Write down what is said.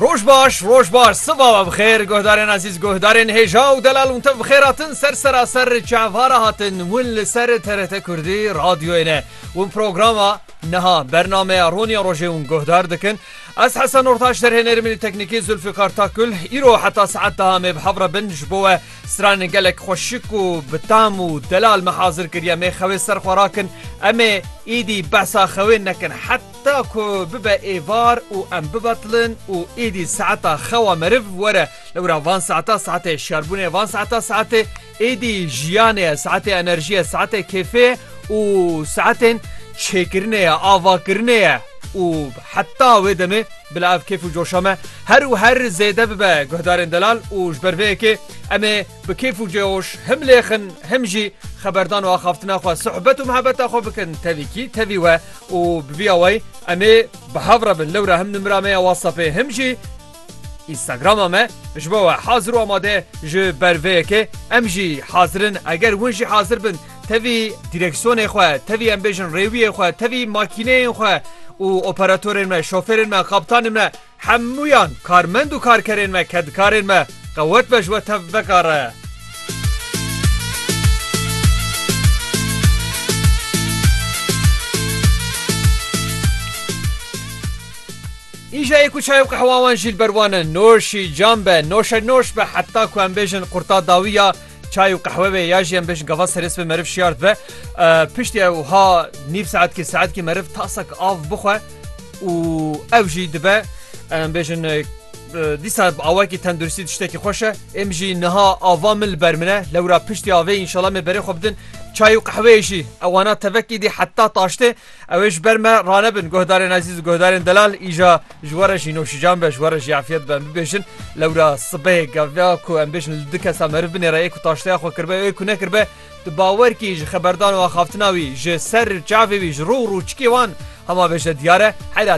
Roj baş, roj baş, siva ve bixêr, guhdarên ezîz, guhdarên hêja û delal hûn tev bixêr hatin ser seraser çavara hatin hûn li ser TRT Kurdî radyoyê ne. Hûn programa niha bernameya Roniya Rojê hûn guhdar dikin. Ez Hesen Ortaş derhênêr min teknîkî Zulfikar Takul îro heta saet daha me bi hevre bin ji bo we stranên gelek xweşik û bi tam û delal me hazir kiriye mê xewê ser xwe rakin em ê êdî behsa xewê nekin het Ta ku bibe êvar û em bibetilin û êdî saeta xewa meriv were. Lewra van saeta saetê şiyarbûnê ye, van saeta saetê êdî jiyanê ye, saetê enerjiyê ye, saetê kêfê ye û saetên çêkirinê ye, avakirinê ye û heta wê demê bila ev kêf û coşa me her û her zêde bibe. Guhdarên delal û ji ber vê yekê em ê. Bi kêf û cêhoş him lêxin him jî xeberdan û axaftina xwe, suhbet û mihebeta xwe bikin tevî kî tevî we û bi vîya wey em ê bi hev re bin. Lewra him nimira me ya WhatsAppê him jî Instagrama me ji bo we hazir û amade ji ber vê yekê. Em jî hazir in eger hûn jî hazir bin tevî dîreksiyonê xwe, tevî em bêjin rêwiyê xwe, tevî makîneyên xwe û operatorên me, şofêrên me, kaptanên me Hemûyan karmend û karkerên me, kedkarên me qewet be ji we tevveka re. Îja yê ku çay û qehwa wan jî li ber wan e, noşî, cam be, noşe noş be heta ku em bêjin qurta dawî ya Çay û qehwe vê ya jî em bêjin gava serês ve meriv şiyar dibe. Piştî ew ha nîv saetkî saetkî meriv tasek av bixwe û ew jî dibe em bêjin dîsa awakî tenduristî tiştekî xweş e êm jî niha ava min li ber min e lewra piştî avê înşala me berê xwe bidin çay û qehweyê jî ewana tevekî dî heta taştê Ew ê ji ber me ranebin. Guhdarên ezîz û guhdarên delal îja ji we re jî nûşijan be, ji we re jî efyet be. Em bibêjin lewra sibehê gava ku em bêjin li du kesa meriv binêre ê ku taşteya xwe kiribe û ê ku nekiribe di bawerkî ji xeberdan û axaftina wî ji ser çavê wî ji rû û rûçikê wan hema bêje diyar e. Heyra